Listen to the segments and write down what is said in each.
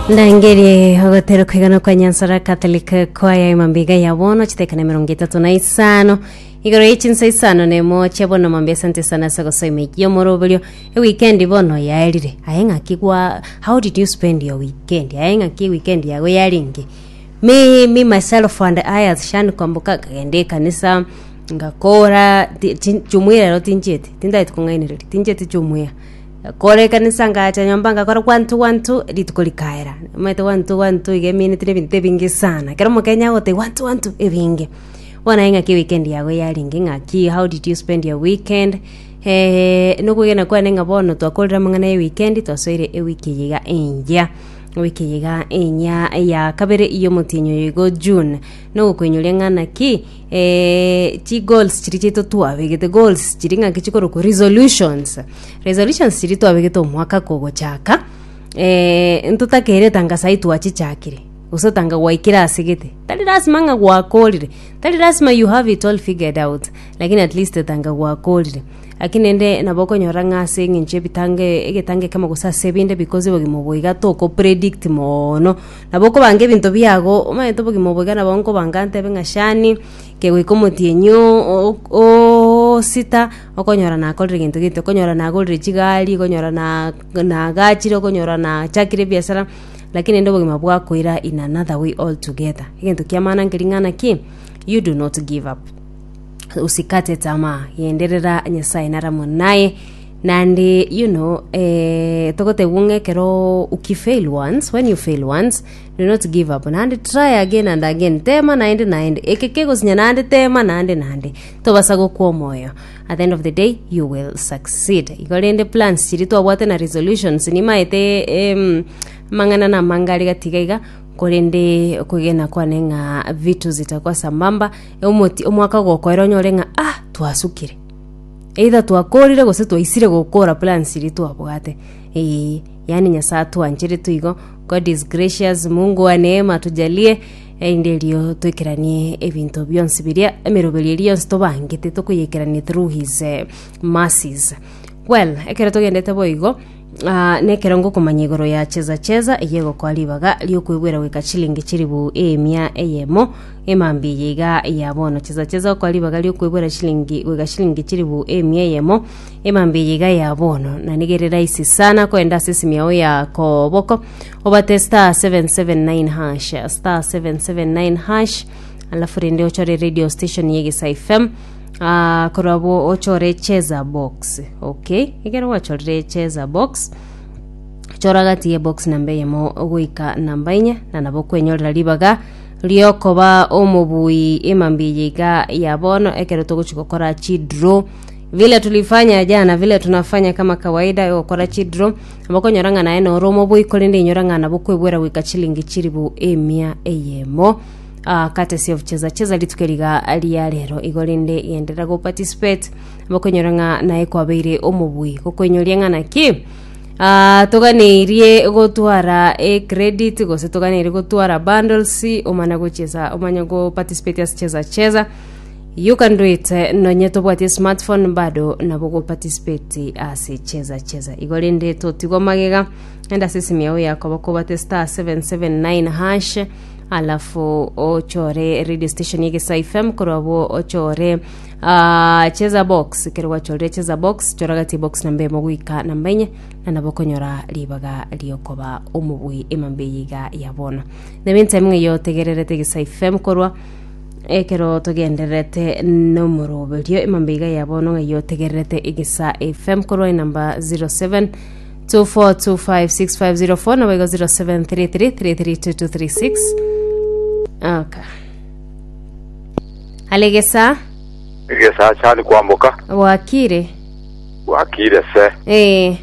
Ndangeri ogotera kwigana kwa Nyansara Catholic Choir emambiga ya bono chitekana emerongo etato na isano igoro ye chinsa isano na emo chia bono mambia asante sana ase gosoa emeiki y'omoroberio ewikendi bono yaerire aye ng'aki gwa how did you spend your weekend aye ng'aki weekend yago yari inki me, me myself and I as Shan Kwamboka nkagenda ekanisa ngakora ti- ti- chumwirero tinchieti tindageti kong'ainereria tinchieti chumwira Kore ekanisa ngacha nyomba ngakora gwanto gwanto, rituko rikaera. Omanyete gwanto gwanto iga emineti na ebinto ebinge sana. Ekero omokenya agotebi gwanto gwanto ebinge. Bono aye ng'aki weekend yago yarenge ng'aki how did you spend your weekend? Eh, na okwegena kwane ng'a bono twakorire amang'ana ya weekend twasoire ewiki eye iga engiya. Ewiki eye iga engiya ya kabere ya omotienyi oyo igo June. Na ogokoinyoria ng'a naki Eeh chi goals chiria chiaito twabegete goals chiria ng'aki chikorokwa resolutions resolutions chiria twabegete omwaka kogochaka eh, ntotakeire etangaso aye twachichakire gose otanga gwaikire ase gete tari lasima ng'a gwakorire tari lasima you have it all figured out lakini at least otanga gwakorire naki naende nabo okonyora ng'a ase eng'encho ebitange egetange ekemo gose ase ebinde because obogima obo iga tokopredict moono. Nabo okobanga ebinto biago, omanyete obogima obo iga nabo nkobanga ntebe ng'a Shani, kegoika omotienyi o- o- o- osita, okonyora nakorire gento gete, okonyora nagorire chigari, okonyora na- nagachire, okonyora nachakire ebiasara, lakini rende obogima bwakoira in another way altogether. Egento kiamana nkeria ng'a naki, you do not give up, usikate tamaa, genderera Nyasaye nare amo naye. Naende you know eh, togotegwa ng'a ekero uki fail once when you fail once do not give up naende try again and again tema naende naende eke kegosinya naende tema naende naende tobasa gokwa omoyo at the end of the day you will succeed igo rende plans chiri twabwate na resolutions nimaete em, amang'ana na amanga are gatiga iga korende okwegena kwane ng'a vitu zitakuwa sambamba omoti omwaka gokoera onyore ng'a ah twasukire Either twakorire gose twaisire gokora plans eria twabwate. Ee, yani Nyasae atwancherete igo. God is gracious, Mungu wa neema atujalie, erinde erio toikeranie ebinto bionsi biria, emeroberio eria yonsi tobangete tokoyeikerania through his eh, mercies. Well, ekero togendete boigo, Aa nekerongo okomanya igoro ya chesa chesa eyio egokoa ribaga ri'okwegwera goika chilingi chilifu eemia eyemo, emambia eye iga ya bono, chesa chesa egokoa ribaga ri'okwegwera chilingi goika chilingi chilifu eemia eyemo, emambia eye iga ya bono. Na nigo ere rahisi sana kogenda ase esimi yao ya koboko, obate star 779 hash, star 779 hash, alafu rende ochore radio station ya egesa fm, Aa korwa bo ochore echeza box okay ekero gwachorire echeza box chora gati ye box namba eyemo goika namba enye na nabo kwenyorera ribaga riokoba omobui emambia eye iga ya bono ekero togochi gokora chidro vile tulifanya jana vile tunafanya kama kawaida egokora chidro abakonyora ng'a naye noro omobui korende inyora ng'a nabo kwebwera goika chilingi chilifu emia eyemo Ah, courtesy of Cheza Cheza rituke riga ria rero igo rinde genderera go participate bakonyora ng'a naye kwabeire omobui gokoinyoria ng'a naki Ah, toganeirie gotwara e credit gose toganeirie gotwara bundles omana gocheza omanye go participate as Cheza Cheza you can do it eh, nonye tobwatie smartphone bado nabo go participate ase Cheza Cheza igo rinde totigwa magega enda sesimi yao yakoba kobate star 779 hash alafu ochore radio station ya Gesa FM korwa abwo ochore ah, cheza box kero gwachorire cheza box chora gati box namba emo gwika namba enye na nabo konyora ribaga riokoba omobui emambe yiga ya bono nebe ntime ng'eyo tegererete Gesa FM korwa ekero togendererete nomoroberio emambe iga ya bono ng'eyo tegererete egesa fm korwa enamba 07 24256504 na boigo 0733332236 okay alegesa egesa chani kwamboka bwakire bwakire se eh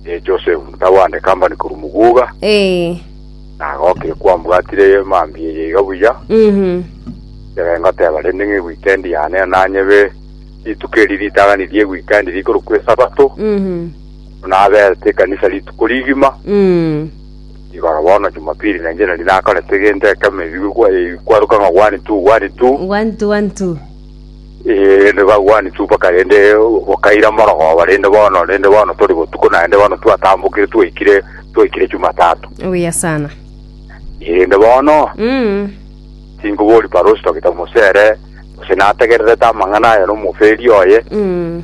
e joseph ntawande kambani koru muguga eh nagokire kwambwatire mambi eye iga buya mhm ere ngoteba rende ng'e weekend yane nanyebe rituko eri ritagani rie weekend rikoro kwesabato mhm buna aberete ekanisa rituko rigima, Mm. igoro bono Jumapili na inche nari nakorete egento ekemo ebi gokwa- eh, kwaruka ng'a one two one two One two one two. Eh, rende ba one two mpaka rende bokaira morogoba rende bono rende bono tori botuko naende bono twatambokire twaikire twaikire Jumatatu Obuya sana. Eh, rende bono Mm. tingobori parosi togita mosere gose nategererete amang'ana aye nomoferi oye Mm.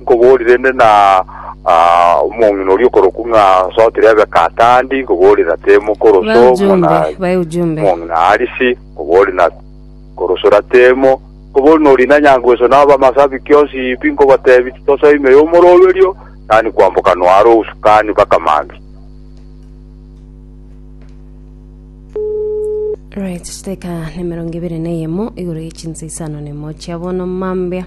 Nkoboorire inde na omong'ina oria okorokwa ng'a Sootiri abe Katandi, nkoboorire na Temu koroso muna omong'ina Arisi, nkoboorire na koroso ra Temu, nkoboorire na orina nyangweso na abamasabiki onsi pi, nkobateebia, Titosa ime y'omoroberio, tani kwamboka noara obosukani mpaka mambia. Right, chidakika nemerongo ebere neyemo igoro ye chinsa isano nemo chia bono mambia.